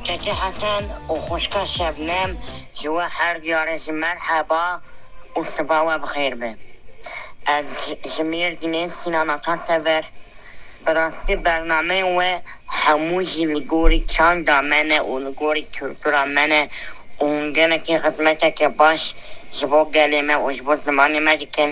Keçê Hesen û xwişka Şebnem ji we her diyarê jî merheba û siba we bi xêr be. Ez ji Mêrdînê Sînan Ata Sever. Bi rastî bernameyên we hemû jî li gorî çanda me ne û li gorî kultura me ne û hûn gelekî xizmeteke baş ji bo gelê me û ji bo zimanê me dikin.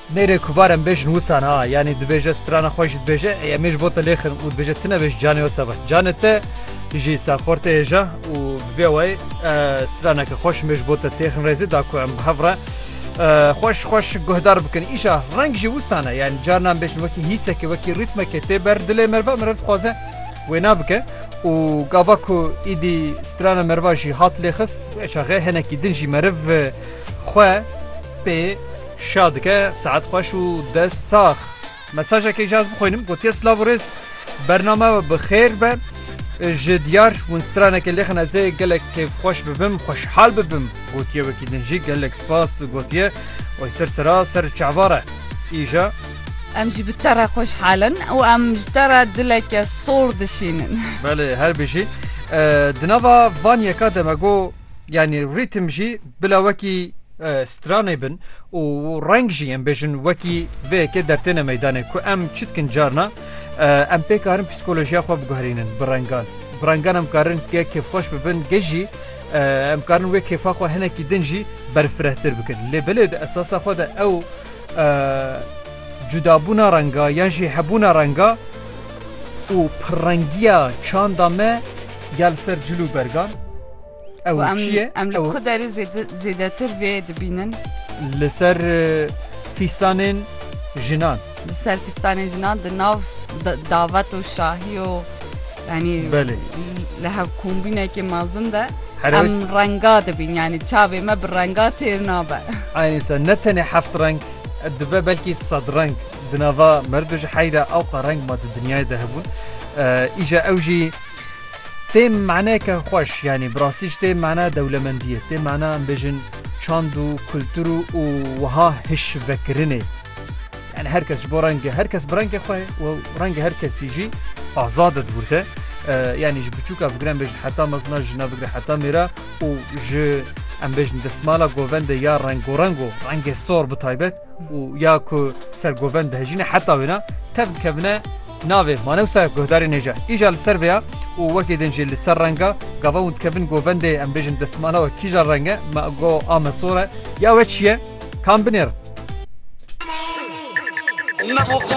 Nêrê ku barem bêjin wisan ha, yanî dibêje strana xwe jî dibêje ey em ê ji bo te lêxin û dibêje tu nebêj canê wisa be. Canê te jî saxor tê hêja û bi vê wayî straneke xweş mê ji bo te têxin rêzê da ku em bi hev re xweş xweş guhdar bikin. Îşa reng jî wisan e yanî carinan bêjin wekî hîseke wekî rîtmeke tê ber dilê meriva meriv dixwaze wêna bike û gava ku îdî strana meriva jî hat lêxist çaxê hinekî din jî meriv xwe pê Şa dike saet xweş û dest sax. Mesajekê jaz bixwînim gotiye silav û rêz bername we bi xêr be. Ji diyar hûn stranekê lêxin ez ê gelek kêfxweş bibim xweşhal bibim gotiye wekî din jî gelek spas gotiye oy ser sera ser çavar e îja. Em jî bi te re xweşhal in û em ji te re dileke sor dişînin. Belê herbijî. Di nava van yeka de me got Yanî rîtim jî bila wekî stranê bin û reng jî em bêjin wekî vê yekê dertêne meydanê ku em çi dikin carna em pê karin psîkolojiya xwe biguherînin bi rengan. Bi rengan em karin gê kêfxweş bibin gê jî em karin wê kêfa xwe hinekî din jî berfirehtir bikin. Lê belê di esasa xwe de ew cudabûna renga yan jî hebûna renga û pirrengiya çanda me ya li ser cil û bergan Ew Ku em çi ye? em li Ew- ku derê zêde- zêdetir vê dibînin Li ser e, fîstanên jinan. li ser fistanên jinan di nav s- da- davet û şahî û yanî Belê. li hevkombînekê mezin de Her em ew- renga dibîn yanî çavê me bi renga têr nabe. Aynê ser ne tenê heft reng e, dibe belkî sed reng di nava merdo ji heyra ewqa reng ma di dinyayê de hebûn. E, Îja ew jî Tê maneke xweş yanî bi rastî ji tê mana dewlemendî ye. Tê mana em bêjin çand û kultur û û wiha hişvekirinê. Yani her kes ji bo rengê her kes bi rengê xwe û rengê her kesî jî azad e di wir de. Yani ji biçûka bigire em bêjin heta mezina jina bigire heta mêra û ji em bêjin desmala govendê ya rengorengo rengê sor bi taybet û ya ku ser govend dihejîne heta wêna tev dikevine Navê, manewsa guhdarê nêja. Îja li ser vê ya û wekî din jî li ser reng a. Gava hûn dikevin govendê em bêjin destmala we kîja reng e? Me go a me sor e. Ya we çi ye? Kam binêrin?